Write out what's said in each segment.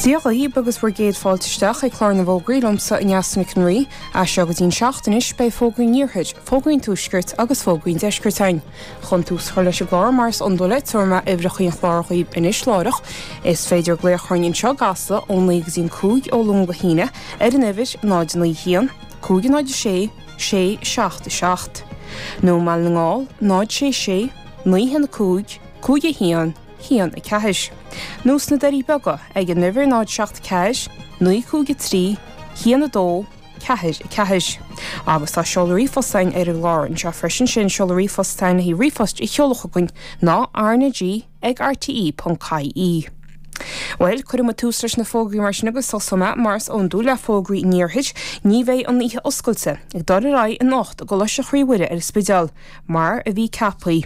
Dia dhaoib agus bhur gcéad fáilte isteach ag clár na bhfógraí liomsa Neasa Nic an Rí. As seo go dtí'n seacht anois, beidh fógraí an Iarthair, fógraí an Tuaiscirt agus fógraí an Deiscirt ann. Chun tús a chur leis an gclár mar is iondúil tabharfaidh mé uimhreachaí an chláir dhaoib anois láithreach, is féidir glaoch orainn anseo i gCasla ón 9 go dtí'n 5 ó Luan go hAoine ar an uimhir 091 506 677. Nó i mBaile na nGall, 066 915 5110. 1 4. nó sna Doirí Beaga ag an uimhir 0 7 4 9 5 3 1 2 4 4 agus tá seoladh ríomhphoist againn ar an gclár anseo freisin, sin seoladh ríomhphost sainithe ríomhphoist a sheoladh chugainn ná rnag ag rte.ie. Bhuel, cuirfidh muid tús leis na fógraí mar sin agus tosóidh mé, mar is iondúil, le fógraí an Iarthair. Ní bheidh an oíche oscailte ag dul ar aghaidh anocht i gColáiste Chroí Mhuire ar an Spidéal, mar a bhí ceaptha.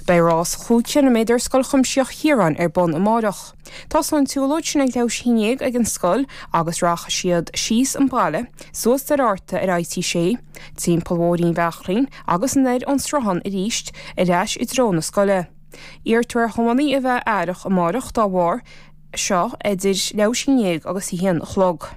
Beidh rás chúig chiliméadar Scoil Chuimsitheach Chiaráin ar bun amáireach. Tosóidh an tsiúlóid sin ag leathuair tar éis a haon déag ag an scoil agus rachaidh siad síos an baile, suas Doire Fhearta ar IT 6, timpeall Bhóithrín Bheachrainn agus anoir ón Sruthán arís ar ais i dtreo na scoile. Iarrtar ar thiománaithe a bheith aireach amáireach dá bharr seo idir leathuair tar éis a haon déag agus a haon a chlog.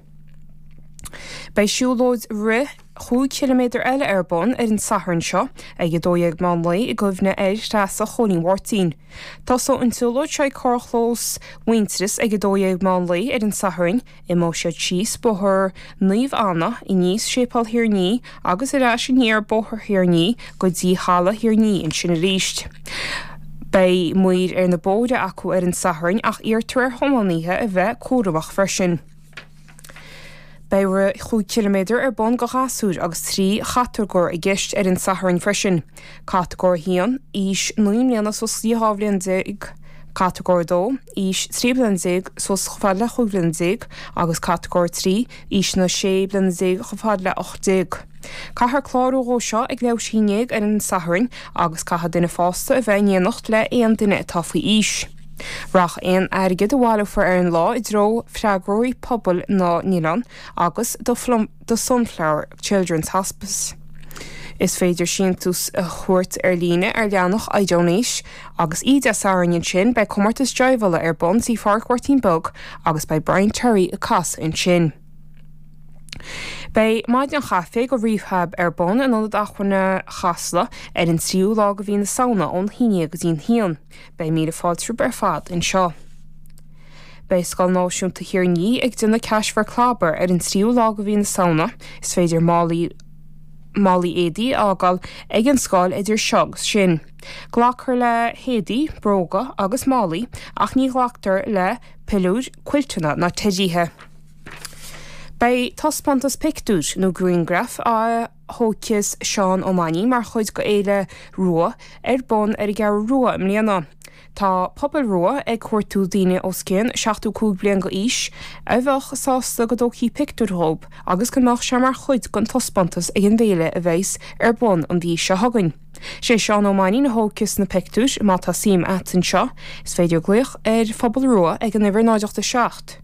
Beidh siúlóid rith. chúig chiliméadar eile ar bun ar an Satharn seo ag 12:00 meán lae i gcuimhne ar Threasa Chóilín Mháirtín. Tosóidh an tsiúlóid seo ag carrchlós Mhuintearas ag 12:00 meán lae ar an Satharn, imeoidh siad síos Bóthar Naomh Anna, aníos Séipéal Thír an Fhia agus ar ais aniar Bóthar Thír an Fhia go dtí Halla Thír an Fhia ansin arís. Beidh maoir ar na bóithre acu ar an Satharn ach iarrtar ar thiománaithe a bheith cúramach freisin. Beidh rith chúig chiliméadar ar bun do ghasúir agus trí chatagóir i gceist ar an Satharn freisin, Catagóir 1, aois naoi mbliana suas go dtí dhá bhliain déag, Catagóir 2, aois trí bliana déag suas chomh fada le chúig bhliana déag agus Catagóir 3, aois na sé bliana déag chomh fada le hocht déag. Caithfear clárú dhó seo ag leathuair tar éis a haon déag ar an Satharn agus caithfidh duine fásta a bheith in éineacht le aon duine atá faoi aois. Rachaidh aon airgead a bhaileofar ar an lá i dtreo freagróirí pobail na nOileán agus do Sunflower Children's Hospice. Is féidir síntiús a thabhairt ar líne ar leathanach iDonate. Agus oíche Dé Sathairn ansin, beidh comórtas jaidhbheála ar bun Tigh Phádraic Mháirtín Beag agus beidh Brian Terry ag casadh ansin. Beidh maidin chaife do Rehab ar bun in Ionad Acmhainne Chasla ar an tríú lá de mhí na Samhna ón haon déag go dtí an haon. Beidh míle fáilte romhaibh ar fad anseo. Beidh Scoil Náisiúnta Thír an Fhia ag déanamh Cash for Clobber ar an tríú lá de mhí na Samhna. Is féidir málaí málaí éadaí a fhágáil ag an scoil idir seo agus sin. Glactar le héadaí, bróga agus málaí ach ní ghlactar le piliúir, cuilteanna ná teidíthe. Beidh taispeántas pictiúr nó grianghraif á thógfas Seán Ó Mainnín mar chuid d'Fhéile Rua ar bun ar an gCeathrú Rua i mbliana. Tá Pobal Rua ag cuartú daoine os cionn 75 bliain d'aois a bheadh sásta go dtógfaí pictiúir dhób agus go mbeadh sé mar chuid den taispeántas ag an bhféile a bheas ar bun an mhí seo chugainn. Sé Seán Ó Mainnín a thógfas na pictiúir. Má tá suim a't anseo, is féidir glaoch ar Phobal Rua ag an uimhir 0 8 7.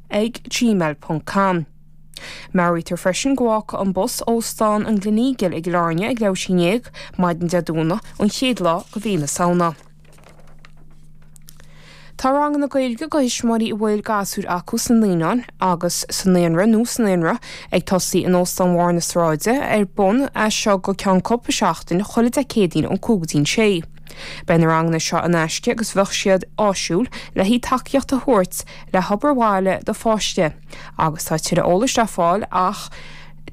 ag gmail ponc com. Meabhraítear freisin go bhfágfaidh an bus Óstán an Gleneagle i gCill Airne ag leath théis a haon ndéag, maidin Dé Domhnaigh, an chéad lá de mhí na Samhna. Tá ranganna Gaeilge do thuismitheoirí a bhfuil gasúir acu sna naíonáin agus sa naíonra nó sa naionra ag tosaí in Óstán Bharr na Sráide ar bun as seo go ceann cúpla seachtain chuile Dé Céadaoin ón cúig go dtí'n sé. Beidh na ranganna seo in aisce agus bheadh siad áisiúil le haghaidh tacaíocht a thabhairt le hobair bhaile do pháiste agus tá tuilleadh eolais le fáil ach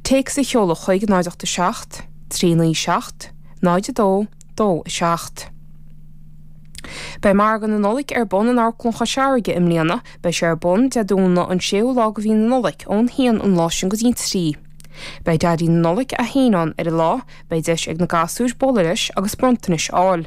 téacs a sheoladh chuig 0 8 7 3 9 7 0 2 2 7. Beidh Margadh na Nollag ar bun in Amharclann Chois Fharraige i mbliana. Beidh sé ar bun Dé Domhnaigh an 6ú lá de mhí na Nollag ón haon an lá sin go dtí an trí. Beidh Daidí na Nollag é fhéin ann ar an lá, beidh deis ag na gasúir bualadh leis agus bronntanais a fháil.